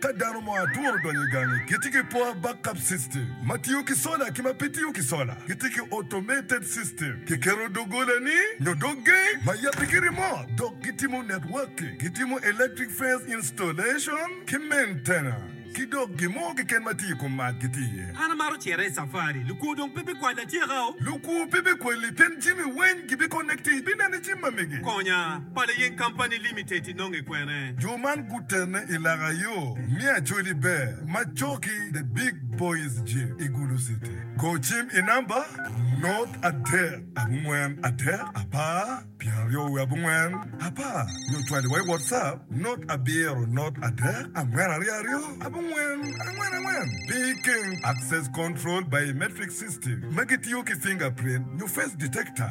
Ka dano mo atworo odonyo i gangi, gitye ki poor backup system ma tiyo ki sola ki ma pe tiyo ki sola. Gitye ki automated system, kiketo doggolani nyo dog gate ma yabbe ki remote, dok gitimo networking, gitimo electric fence installation ki maintenance, ki dok gin mo keken ma tye i kom mac gitye iye. An amaro cito i safari. Lukwo dong pe bikwala atyeka-o. Lukwo pe bikwali pien jami weny gibiconnecti ibineno i jim ma mege. Konya, Pala Yen Company Limited. inonge kwene? Jo man gutene i laka yo me Acholi Ber ma coki The Big Boys Gym i Gulu City. Go cim i namba, Not adek, abongwen, adek, apar, pyeraryo wiye abongwen, apar, nyo cwali wa i WhatsApp, Not abiro, not adek, angwen aryo aryo, abongwen, angwen angwen. Pi keng, Access Control Biometric System ma gitiyo ki fingerprint nyo face detector.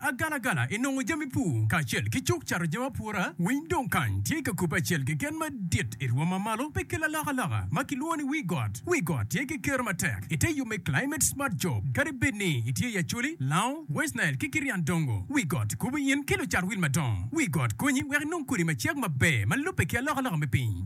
Agalagala i nongo jami pur kacel ki cuk cato jami apura, winy dong kany tye ka kubbe acel keken madit i rwom ma malo me kelo alokaloka ma kilwongo ni wii got. Wii got tye ki kero matek i te yo me Climate Smart Job. Kadi bed ni itye i Acholi, Lao, West Nile ki Kirian Dongo, wii got kubo in ki lucat wil madongo. Wii got konyi wek inong kodi macek maber ma lubbe ki alokaloka me piny.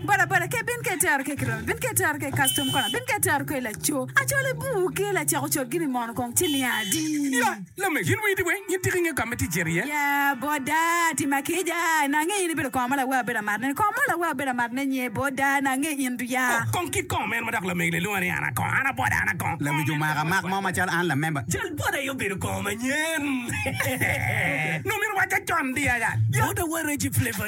Boda boda ke bin ke tero ke kirobe bin ke tero ke custom kona bin ke tero ke laco acole buu ke lacako cot gini mono kong ci niya adi Ya, lame, yin wii di weng? Yin tika inge kame ti cito iye? Ya, boda, ti ma kica, na ange in ibedo koma ma lawe abedo amarne ni, koma ma lawe abedo amarne nye, boda, na ange in du ya. Oh, kong kit kom en ma dok lamegi lelunga ni an akong, an aboda, an akong. Lawic omaka mak mo macalo an lamemba. Cal boda aye obedo koma manyen. Nongo myero owaca con di aya. Boda wa Reggie Flavour.